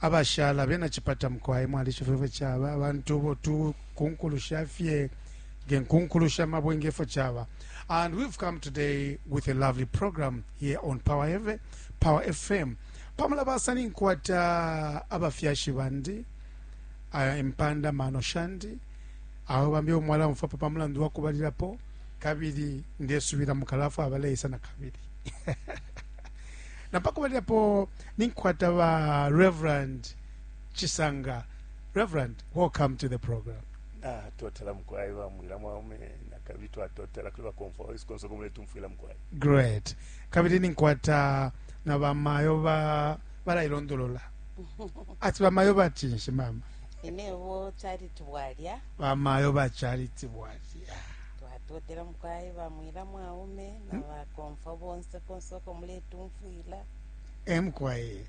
abashala bena chipata mukwai mwalishiba ifyo chaba abantu bo tu kunkulu shafye nge nkunkulu sha mabwe ngefyo chaba and we've come today with a lovely program here on power Eve, power fm pamula basani nkwata abafyashi bandi uh, impanda mano shandi aho bambi omwala mfapo pamulandu wakubalilapo kabili ndesubila mukalafu abaleisa na kabili na pa kubalilapo ninkwata ba reverend chisanga reverend welcome to the program natotela ah, mukwai bamwila mwaume nakabili twatotela kuli bakomfwa waisu konse komule tumfwila mukwai great kabili ninkwata na bamayo ba balailondolola ati bamayo batinshi mama inebo charity bwalya bamayo ba charity bwalya Twatotela mukwai ba mwila mwaume na hmm? bakomfwa bonse konse uko muletumfwila e mukwai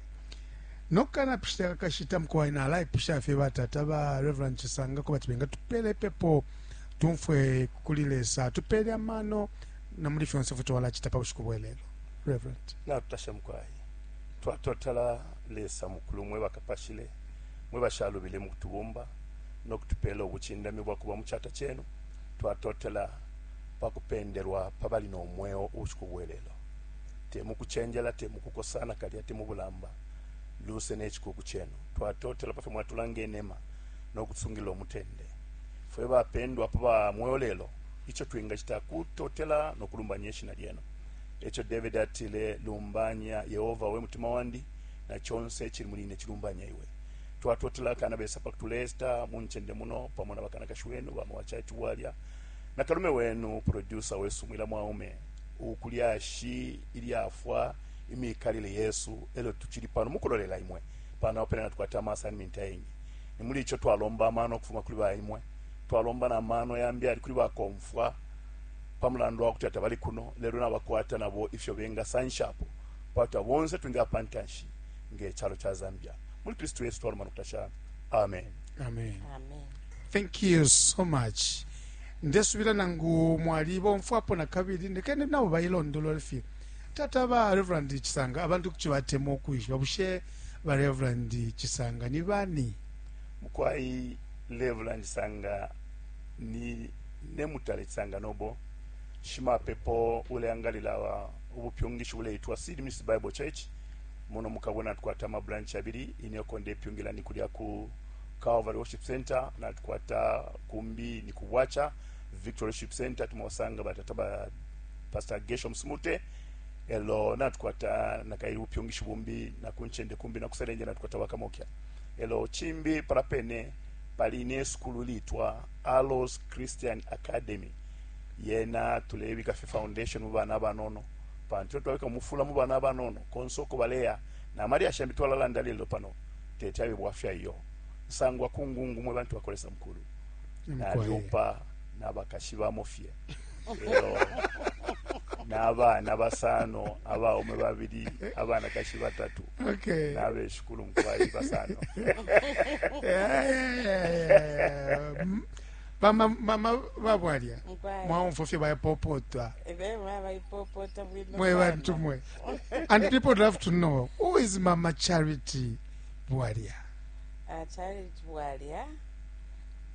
nokana pishita kakashita mukwai nalaipusha fye batata ba reverend chisanga ko bati benga tupele pepo tumfwe kuli lesa tupele amano na muli fyonse fwe twalachita pa bushiku bwelelo reverend natutasha mukwai twatotela lesa mukulu mwe bakapashile mwe bashalubile mu kutubumba no kutupela obuchindami bwa kuba mu chata chenu Twatotela pa kupendelwa pa bali no mweo ubushiku bwe lelo, te mu kucenjela, te mu kukosa, nakalya te mu bulamba, luse ne cikuku cenu. Twatotela pafyo mwatulanga inema no kutusungilila umutende. Fwe bapendwa pa ba mweo lelo, ico twingacita kutotela no kulumbanya ishina lyenu. Eco Davidi atile, Lumbanya Yehoba, we mutima wandi, na conse icili muli ine cilumbanye iwe. Twatotela kana besa pakutuleta muncende muno pamo na bakanakashi wenu bama wa chaichi Bwalya na kalume wenu producer wesu Mwila Mwaume u kulyashi ilyafwa imikalile yesu elyo tuchili pano mukulolela imwe pano apo pena natukwata ama assignment ayengi nimuli icho twalomba amano ukufuma kuli ba imwe twalomba na mano yambi ali kuli bakomfwa pamulandu wakuti atabali kuno lelo nabakwata nabo ifyo benga sanshapo pakuti bonse twinga pantanshi nge chalo cha Zambia. Muli Kristu Yesu twaluma nokutasha. Amen. Amen. Amen. Thank you so much. Ndesubira nangu mwali bomfwapo na kabili ndekene nabo bayilondolola fye. Tata ba Reverend Chisanga abantu kuchibatemo kwishiba bushe ba Reverend Chisanga ni bani? Mukwai Reverend Chisanga ni ne mutale Chisanga nobo shimapepo uleangalila wa ubupyungishi uleitwa Seed Miss Bible Church Muno mu Kabwe natukwata ama branch yabili, ine uko ndepyungila ni kulya ku Calvary Worship Center, natukwata kumbi ni ku Bwacha Victory Worship Center, tumosanga batata ba Pastor Gershom Smute, elo natukwata nakaili bupyungishi bumbi na kunchende kumbi na kuselenje natukwata bakamokya elo chimbi palapene pali ne sukulu litwa Alos Christian Academy yena tulebika fye foundation mu bana abanono pantu ifyo twabika mufula mu bana abanono konse uko baleya na malyashi yambi twalalanda lello pano teti abe bwafya iyo. Nsangwa ku ngungu mwe bantu bakwa Lesa mukulu. Nalyupa na bakashi bamo fye. Lelo na bana basano abaume babili abana kashi batatu okay. nabe shikulu mkwai basano yeah, yeah, yeah, yeah. Bama mama babwalya Mkwaya. mwaumfwa fye bayapopota Ebe mwaba ipopota bwino mwe sana. bantu mwe and people would love to know who is mama charity bwalya Ah, Charity Bwalya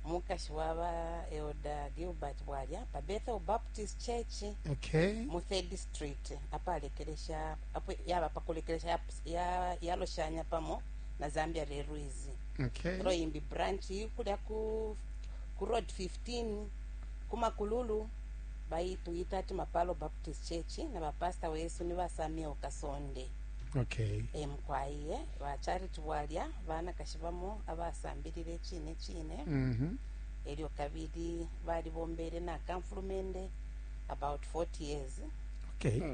mukashi waba Elder Gilbert Bwalya pa Bethel Baptist Church okay mu Third Street apalekelesha apo yaba pakulekelesha yap- ya- yaloshanya pamo na Zambia Railways Okay. Ro imbi branch kulya ku ku road 15 kumakululu bayituyita ati mapalo baptist church na bapasta wesu ni basamia ukasonde okay. emkwaiye bachariti bwalya banakashi bamo abasambilile chine chine mm -hmm. elyo kabili balibombele nakamfulumende about 40 years okay. mm.